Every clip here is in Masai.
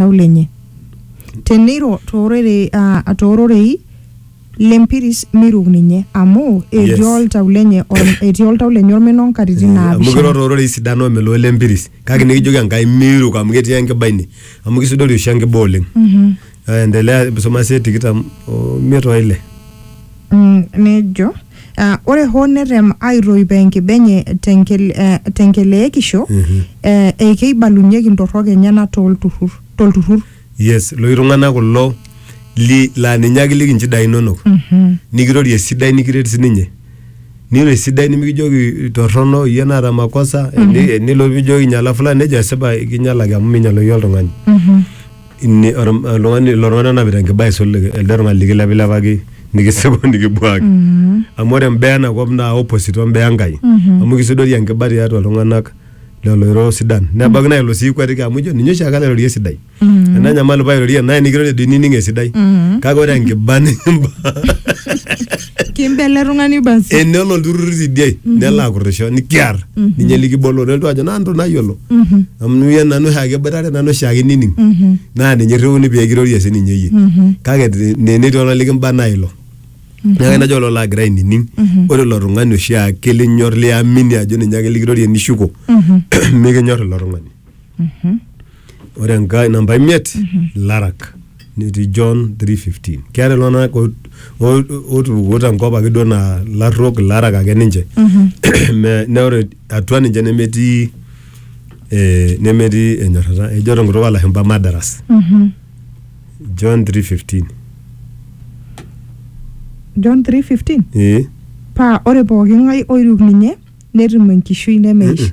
oltau lenye teneiro toororei ah, toororei lempiris miruk ninye amu etii Yes. oltau lenye or- etii oltau lenye ormena onkatitin amu kiro naapishana toororei sidano omeloo lempiris kake nikijoki enkai miiruk amu ketii enkiba ine amu kisudori oshi enkiba oleng Eh, endelea soma sie tikitam omiet oile Mm, nejo eh, ore hoo netem aitoipo enkiba enye tenkel- eh, tenkeleekisho eh, eikeibalunyeki ntorrok enyena tolturrur tolturrur yes loshi tung'anak kulo li laa ninye ake liki nchidai inonok nikirorie esidai nikiret sininye niro esidai nimikijoki torrono iyie naata makosa eni- enilo pijoki inyala fulani nejo esipa kinyalaki amu minyaloyu oltung'ani Ini- or- oltung'ani ilo tung'ani onapita enkiba aisul elde tung'ani likilepilepaki nikisipu nikibuaki amu ore imbaa ena kop naa opposite ombaa enkai amu kisudori enkiba tiatua iltung'anak lelo oiro sidan nebaiki naa ilo sii ikuatiki amu ijo ninye oshiake nairorie esidai ena nyamali pairorie naye nikirorie doi nining esidai kake ore enkiba nikimba Kimbe ele tung'ani basi. enelo olturrur tidie nelo akurrisho nikiar ninye likibolo nelotu ajo nanto nayiolo amu iye nanu oshiake iboitare nanu oshiake nining naa ninye irriuni pee kirorie sininye iyie kake te- ne- netii oltung'ani likimba naa ilo neeku najo ilo laagira ainining ore ilo tung'ani oshiake linyor liamini ajo ninye ake likirorie nishuko mikinyor ilo tung'ani ore enkae namba imiet larak netii john 315 keeta iltung'anak o- o- otupukuo tenkop ake duo naa larruok ilarak ake ninche Me- na ore atua ninche nemetii eh, nemetii enyorrata ejo tenkutuk olashumpa madaras john 315 john 3:15 ee paa ore pooki ng'ae oiruk ninye netum enkishui nemeish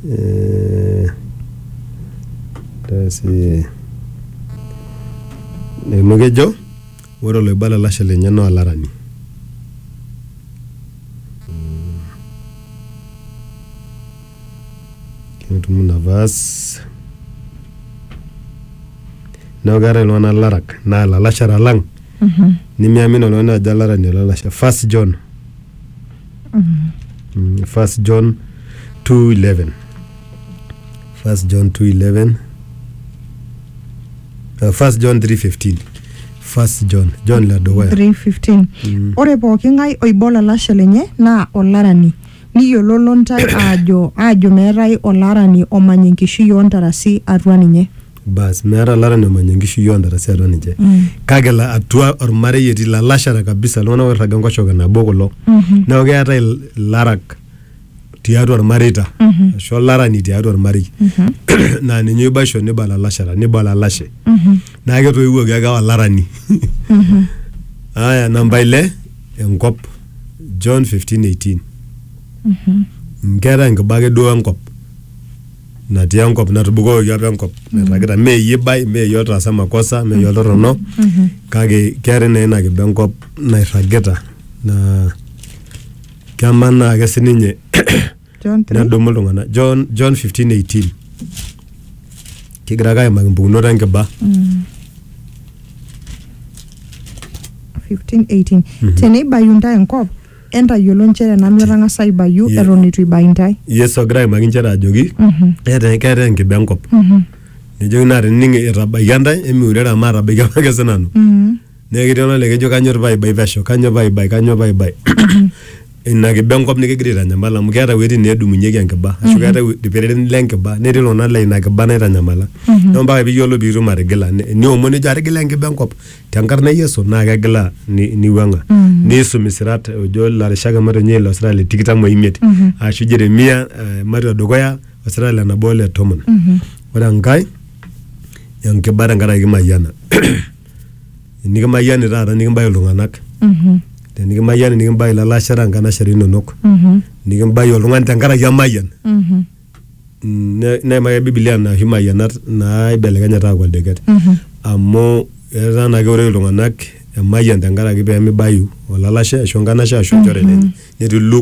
Eh, tasi amu kejo ore oloiba lalashe lenye naa olarani ketum ina verse neeku keetae iltung'anak larak naa ilalashera lang nimiamini oltung'ani ajo olarani olalashe first John Mm, First John 2:11. First John 2:11. Uh, First John 3:15. First John, John la dukuya. 3:15 Mm. ore pooki ng'ae oiba olalashe lenye naa olarani niyiololo ntae aajo aajo meetae olarani omany enkishui oontarasi atua ninye bas meeta olarani omanya enkishui oontarasi atua ninche kake la- atua ormarei etii lalashara kabisa iltung'anak oirraga enkoshoke nabo kulo neeku keetae il- ilarak tiatua ormareita ashu olarani tiatua ormarei naa ninye oibaisho niba lalashara niba olalashe naa ketoiwuoki ake aa olarani aya namba ile enkop John 15:18 Mm, keetae enkiba ake duo enkop natii enkop natubukokoki apa enkop nairragita mee iyie ibai mee iyie otaasa makosa mee iyie oltorrono kake keetae naa ina kiba enkop nairragita naa kemanaa ake sininye John three. nedumu iltung'anak John, John 15:18 kigira ake aimaki impukunot enkiba 15, 18. Teneibayu ntae enkop Entayiolo nchere nanu etang'asa aibayu Ye- eton eitu ibai intae. yesu egira aimaki nchere ajoki keeta keeta enkiba enkop nejoki naa tenining etabaikia ntae emiurere amu atabaikia apake sinanu neeku ketii olale kejo kanyor paibai pesho kanyor paibai kanyor paibai ina kiba enkop nikigira aitanyamal amu keeta iwuejitin needumunyeki enkiba ashu keeta iwu- irkererin lenkiba netii iltung'anak laa ina kiba naitanyamala neeku mpaka piyiolo piitum atigila ni- niomon nijo atigila enkiba enkop tenkarna e Yesu naa kegila ni- niwuang'a niisum isirat ojo ilarishak emato ninye ilo sirat le tikitam oimiet ashu Jeremia eh, matua dukuya osirat le nabo ole tomon ore enkae enkiba tenkaraki kimayiana enikimayiani taata nikimbayu iltung'anak Mhm. tenikimayiani nikimbayu ilalashera nkanashera inonok Mhm. nikimbayu oltung'ani tenkaraki emayian Mhm. ne- neimaki ake bibilia nena oshi mayianat naaibelekenya etaa akua ildeket amu etaa naa keure iltung'anak emayian tenkaraki pemibayu olalashe ashu enkanashe ashu enchore lenye netii luke